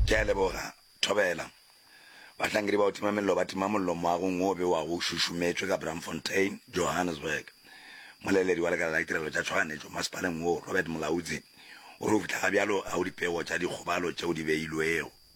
Ke a leboga. Thobela. Bahlankedi ba go tima mello ba tima mollo moagong wo o bewago o šušumetšwe ka Braamfontein, Johannesburg. Moleledi wa Lekala la Ditirelo tša Tšhoganetšo masepaleng wo, Robert Mulaudzi, o re go fihla ga bjalo ga go dipego tša dikgobalo tšeo di beilwego.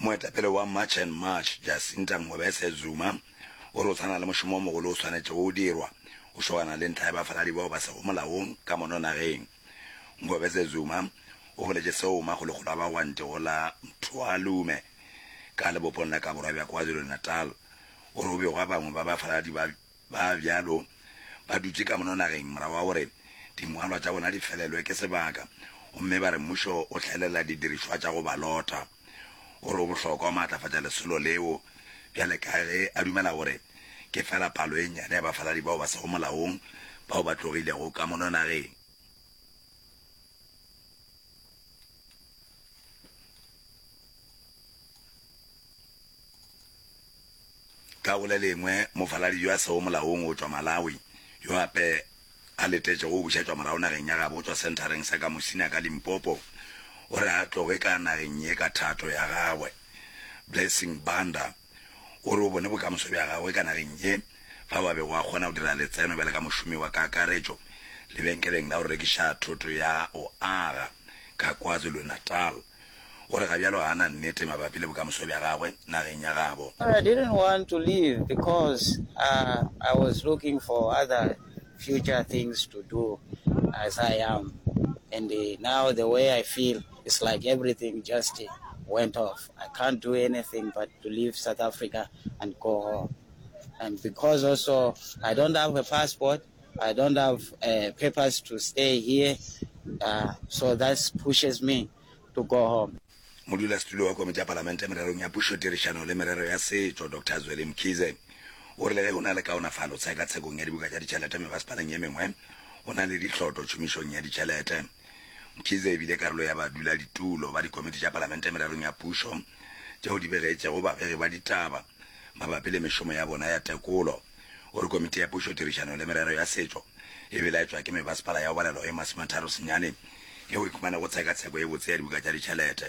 Moetapele wa March and March, Jacinta Ngobese Zuma, o re o sa na le mošomo o mogolo o swanetšego go dirwa go šogana le ntlha ya bafaladi bao ba sego molaong ka mono nageng. Ngobese Zuma o boletše seo makgolokgolo a bagwanti go la Mthoalume ka lebopong la ka borwa bja KwaZulu-Natal. O re go begwa bangwe ba bafaladi ba Ba bjalo ba dutše ka mono nageng morago ga gore dingwalwa tša bona di felelwe ke sebaka gomme ba re mmušo o hlaelela didirišwa tša go ba lota. O re o bohlokwa go maatlafatša lesolo leo bjale ka ge a dumela gore ke feela palo e nnyane ya bafaladi bao ba sego molaong bao ba tlogilego ka mono nageng. Ka go le lengwe, mofaladi yo a sego molaong go tšwa Malawi yo gape a letetšego go bušetšwa morago nageng ya gabo go tšwa senthareng sa Kamusina ka Limpopo o re a tloge ka nageng ye ka thato ya gagwe. Blessing Banda, gore o bone bokamoso bja gagwe ka nageng ye fao a bego a kgona go dira letseno bjale ka mošomi wa kakaretšo lebenkeleng la go rekiša thoto ya go aga ka KwaZulu-Natal. O re ga bjalo ga a na nnete mabapi le bokamoso bja gagwe nageng ya gabo. I didn't want to leave because I was looking for other future things to do as I am and now the way I feel. It's like everything just went off. I can't do anything but to leave South Africa and go home. And because also I don't have a passport, I don't have uh, papers to stay here, uh, so that pushes me to go home. modulasetulo wa komiti ya palamente mererong ya pušo tirišano le merero ya setšo dr zweli mkhize o rile ge go na le kaonafalo tshekatshekong ya dibuka tša ditšhelete mebasepaleng ye mengwe go na le ditlhoto tšhomišong ya ditšhelete Mkhize e bile karolo ya baduladitulo ba dikomiti tša palamente mererong ya pušo tšeo di begetšego babegi ba ditaba mabapi le mešomo ya bona ya tekolo. O re komiti ya pušo, tirišano le merero ya setšo e belaetšwa ke mebasepala ya obalelo e masometharo senyane yeo e khumanego tshekatsheko e botse ya dibuka tša ditšhelete.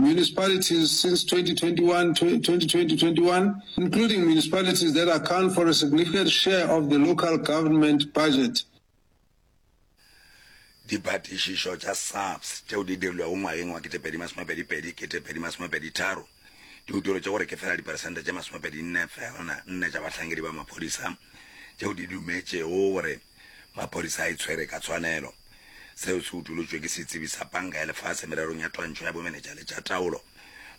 municipalities since 2021, 2020-2021, including municipalities that account for a significant share of the local government budget. Dipatišišo tša SAPS tšeo di dirilwego ngwageng wa ketepedi masomepedi pedi ketepedi masomepedi tharo di utolotše gore ke fela diperesente tše masomepedi nne feelna nne tša bahlankedi ba maphodisa tšeo di dumetšego gore Maphodisa a e tshwere ka tshwanelo. Seo se utolotšwe ke setsebi sa Panka ya Lefase mererong ya twantšho ya bomenetša le tša taolo,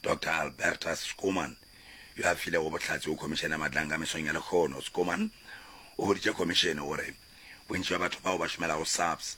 Doctor Albertus Schoeman, yo a filego bohlatse go Khomišene ya Matlankga mesong ya lehono. Schoeman o boditše Khomišene gore bontši bja batho bao ba šomelago SAPS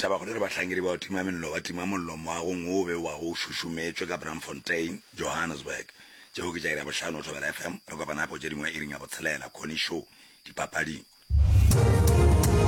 Tabakgolo e re bahlankedi ba go tima mello ba tima mollo moagong wo o bewago o šušumetšwe ka Braamfontein, Johannesburg. Tšeo ke tša iri ya bohlano go Thobela FM. Re kopana gape go tše dingwe iring ya botshelela, Connie Show, dipapading.